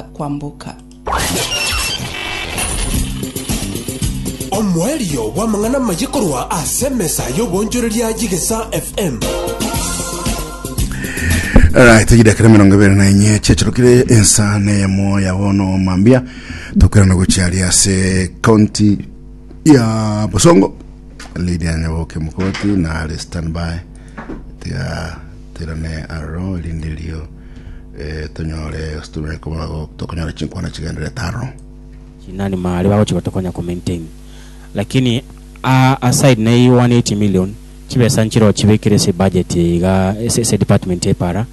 kwamboka. Omoerio bw'amang'ana amaye korwa ase emesa y'oboonchoreria y'Egesa FM. Alright, chidakira mirongo ibere na inye chiachirukire ensa neyemo ya bono mambia tukwirana gochiari ase county ya bosongo lady anyaboke mukoti na ari standby tiga tirane aro lindirio tonyore gose tokonyore chinkwana chigendererete aro. Chinani maare bagochi gotokonya ko maintain lakini a aside na 180 million chibesa nchire ochibekire ase budget eye iga ase department eye para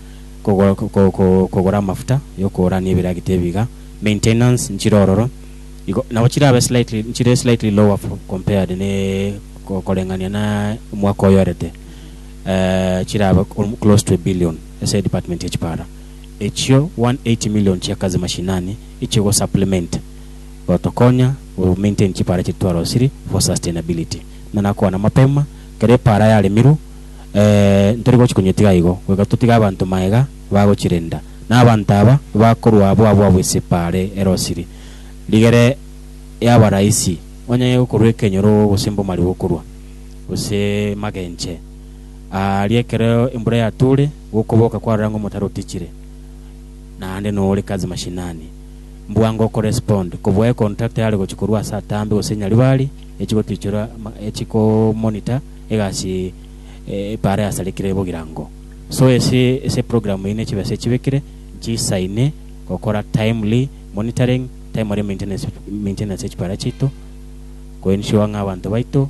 kogora amafuta yokoora ne ebiragita ebi iga maintenance nchire ororo igo nabo chirabe slightly nchire slightly lower compared ne koreng'ania na omwaka oyorete chirabe close to a billion. ase department ya chipara echio 180 million chia kazi mashinani ichio go supplement gotokonya go maintain chipara chiria twarosiri for sustainability buna nakwana mapema kera epara yaremirwe eeh ntori gochi konyetiga igo goika totige abanto maega bagochirenda na abanto aba bakorwa abwo abwo abwo ase epara erosiri rigere yaba rahisi onye gokorwa ekenyoro gose mbomari gokorwa gose magenche. Aaria ekero embura yatoore, gokoboka kwarora ng'a omotaro otichire, naende nore Kazi Mashinani, mbwa ngo correspond kobua econtract yare gochia korwa ase atambe gose Nyaribari echi gotichora echi ko monitor egasi epara yasarekire bogirango. So ase ase program eye ne chibesa echibekire nchisaine gokora timely monitoring, timely maintenance maintenance ya chipara chiaito, ko ensure ng'a abanto baito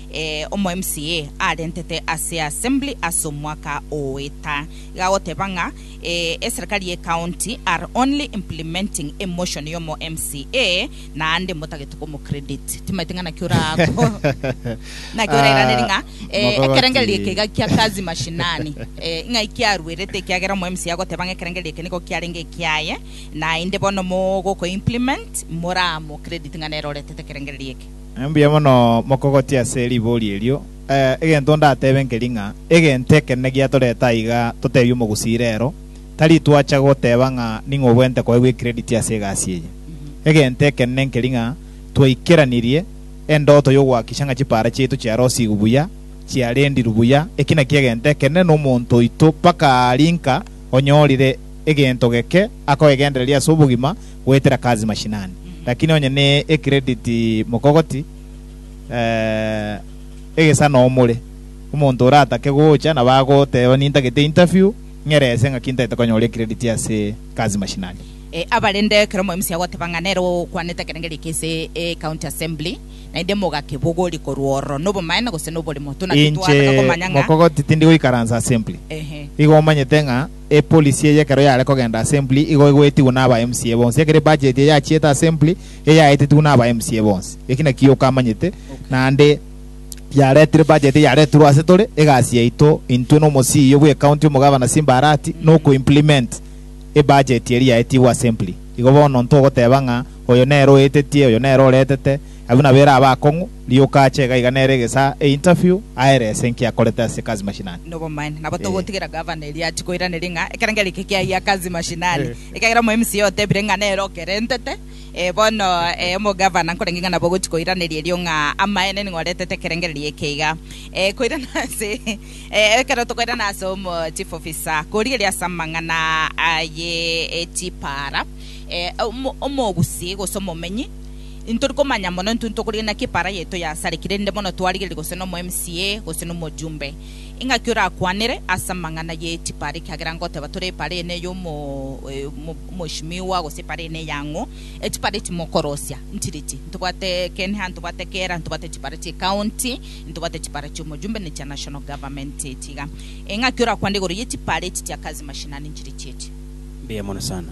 Ee, omo MCA arentete ase Assembly ase omwaka oeta iga agoteba ng'a ee, eserikari ye county are only implementing emotion y'omo MCA naende motagete komo credit. Timaeti ng'a naki ora ko naki orairaneri ng'a ee, Mogogoti. ekerengererio eke iga kia kazi mashinani ee, ng'ai kiaruerete ekiagera omo MCA agoteba ng'a ekerengererio eke nigo kiarenge ekiaye naende bono mogokoimplement moramo credit ng'a nere oretete ekerengererio eke. Mbuya mono mokogotia ase ribori erio. Egento ndatebe nkeri ng'a egento ekenene giatorete aiga totebie omogusii rero, tari twacha goteba ng'a ning'o obwente koegwa ecredit ase egasi eye. Egento ekenene nkeri ng'a twaikeranirie endoto y'ogoakisha ng'a chipaara chiaito chiarosigwe buya, chiarendirwe buya. Eki nakio egento ekenene nomonto oito mpaka aa rinka onyorire egento geke akoegendereria ase obogima, goetera kazi mashinani, lakini onye ne ecredit mokogoti eh, egesa noo more. Omonto oratake gocha nabo agoteba nintagete interview ng'ere ese ng'aki ntaete konyora ecredit ase kazi mashinani. Eh, abarende ekero omoemisi agoteba ng'a nere okwanete ekerengeri eke ase ecounty assembly, naende mogakebogori korwa ororo, nobomaene gose noborimo? Tuna titwaataka Inche komanya ng'a mokogoti tindi goikaransa assembly, ehe, igo omanyete ng'a Epolisi eye ekero yare kogenda Assembly igo egoetigwe naba MCA bonsi. Ekero ebudget eye yachiete Assembly eye yaetetigwe naba MCA bonsi. Eki naki yoka amanyete naende yaretire budget eye yaretirwe ase tore egasi yaito intwe na omosii oyio bw'ecounty Omogavana Simba Arati noko implement ebudget eria yaetigwe Assembly. Igo bono ntogoteba ng'a oyo nere oetetie oyo nere oretete. Abwo nabere aba akong'u, rioka ache iga iga nere egesaa e interview aerese enki akorete ase Kazi Mashinani. Nobomaene, nabo togotigera Gavana eria achi koiraneria ng'a ekerengera eke kiayia Kazi Mashinani, ekiagera omo MCA otebire ng'a nere okerentete, ee bono ee omo Gavana nkorenge ng'a nabo ogochi koiraneria erio ng'a amaene nigo oretete ekerengererio eke iga. Ee koirana ase ee ekero tokoirana ase omo Chief Officer korigeria ase amang'ana aye ee chipaara ee omo omogusi gose omomenyi, Intori komanya mono intwe ntokorigia naki epaara yaito yasarekire rinde bono twarigereria gose nomo MCA gose nomojumbe. Ingaki orakwanere ase amang'ana ye chipaara ekiagera ngoteba tore epaara eye neye omo omoheshimiwa gose epaara eye neyang'o. Echipaara echi mokorosia nchire chi? Ntobwate Kenha, ntobwate Kera, ntobwate chipaara chie county, ntobwate chipaara chia omojumbe ne chia national government echi iga. Ingaki orakwanere igoro ye chipaara echi chia kazi mashinani nchire chi echi? Mbuya mono sana.